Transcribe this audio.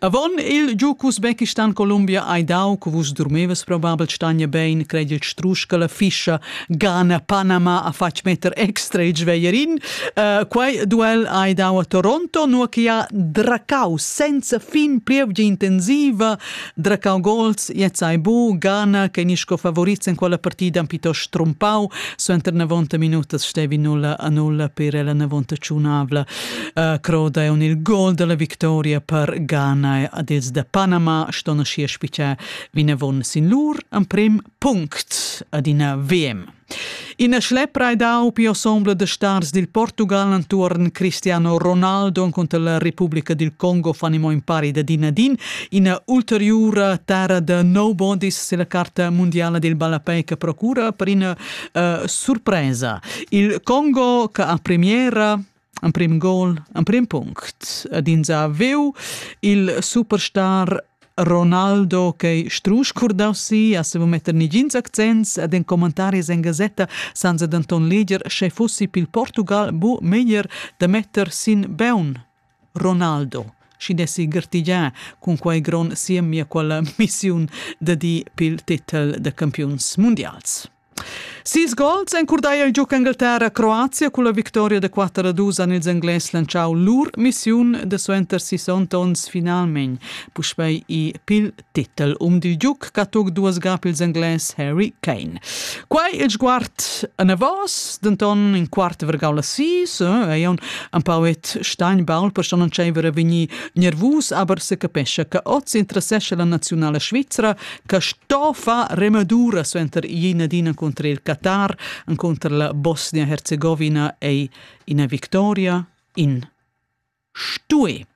Avon il giug Usbekistan Columbia hai dau che vus durmevas probabel stania bein, credel strusch che la fischa Ghana Panama ha fatg metter extra il sveierin. Uh, quei duel hai dau a Toronto, nur che ha dracau senza fin plievgia intensiva, dracau gols, jetzt hai bu Ghana che ni sco favoriz in quella partida piuttosto trumpau, suenter 90 minutas stevi 0 a 0 per la 90 ciunavla. Uh, croda è un il gol della victoria per Ghana ad els da Panama ston sia spiccia vinavon sin lur en prim punct ad ina VM. Ina schlepra ed aupi ensemble de stars dil Portugal antuorn Cristiano Ronaldo contra la Repubblica del Congo fanimo in pari da dinadin ina ulteriura terra de nobodies se la carta mondiale del ballapei che procura per ina uh, surpresa. Il Congo che a premiera Emprim gol, emprim punct. Ed ins ha veu il superstar Ronaldo che strusch curdaus si, a sevo metter negins accents ed en commentaris en gasetta san se denton leger sche fossi pil Portugal bu meglier da metter sin beun Ronaldo schi dessi gertigià cun quai gron siemia quella missiun da di pil titel da campiuns mundials. Sis gols encurdaia il giug Engalterra Croazia culla victoria da 4 a 2 han ils Englais lantschau lur missiun da suenter sis onns finalmein. Puspei i pil titel um dil giug che tuc duas ga pils Englais Harry Kane. Quei il sguard anavos, denton in quart vergau la sis, eh, ei un empauet Steinbaul per schon entscheiver a vegnir nervus, aber se capescha che oz interessesce la nazionala svizra che sto far remadura suenter ina dina contra il Qatar, contra la Bosnia-Herzegovina ei ina victoria in stue.